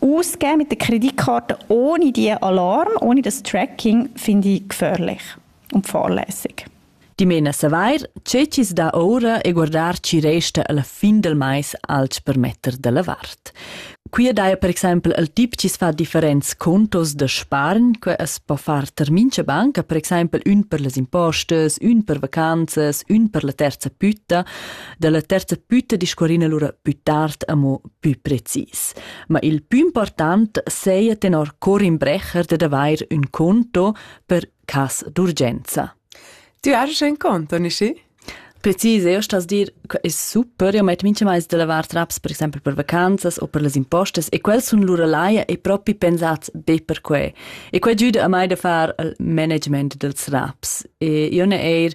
Ausgeben mit der Kreditkarte ohne die Alarm, ohne das Tracking, finde ich gefährlich und fahrlässig. Dimena savair, che chi's dà oura e guardar chi resta alla fin del mais alch per metter da la vart. Qui daja per exempel il tip chi's fa differents contos da spargn, que es po far ter mincha banca, per exempel ün per les impostes, ün per vacanzas, ün per la terza pütta, da la terza pütta discorrina lura pü tard amo pü precis. Ma il pü important seia tenor Corin Brecher dad avair ün conto per cas d'urgenza. Tu hast ein Konto, Nishi? Precis, io stas dir che è super, io metto minchemais da lavar traps per esempio per vacanzas o per las impostas e quels sun lura laia e propi pensats be per que. E que giüda a mai da far il management dels raps. E io ne eir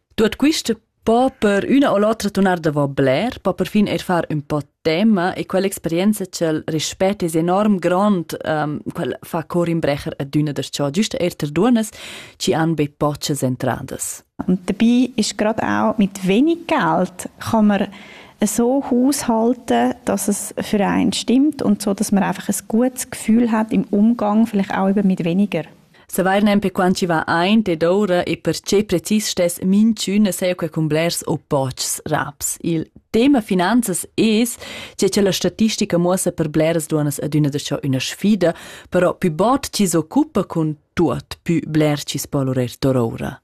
Tuot quist po per üna o l'otra tunar davo bler, po perfin eir far ün po tema e quell'experienza ch'el rispett es enorm grond, um, quel fa cor in brecher adüna darcheu giüst eir ter duonnas chi han be pochas entradas. Und dabei ist gerade auch mit wenig Geld kann man so haushalten, dass es für einen stimmt und so, dass man einfach ein gutes Gefühl hat im Umgang, vielleicht auch eben mit weniger. Savair nempe quant chi va aint ed oura e perche precis stess minchün saja que cun blers opposts raps. Il tema finanzas es che cha la statistica muossa per bleras duonnas adüna da cho üna sfida, però pü bod chi s'occupa cun tuot, pü bler chi's po lurer tour oura.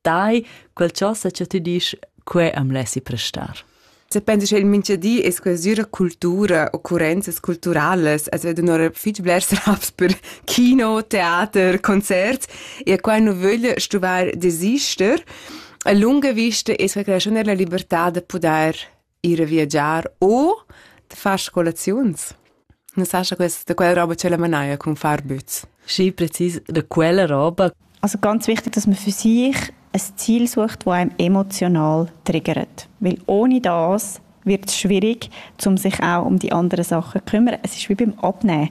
dai quel ciò sa che tu dici que am lessi prestar. Se pensi che il minchadi es quasüra cultura, occurrenzas culturales, as vedo un'ora fitg blers raps per kino, theater, concerts e a quai nu vögl stuvar desister. A lunga vista es que la raschun della libertà da pudair ir a viagiar o da far scolaziuns. Non sa scha questa da quella roba ce la manaia con far bütz. Schi präzis da quella roba. Also ganz wichtig, dass man für sich ein Ziel sucht, das einem emotional triggert. Weil ohne das wird es schwierig, um sich auch um die anderen Sachen zu kümmern. Es ist wie beim Abnehmen.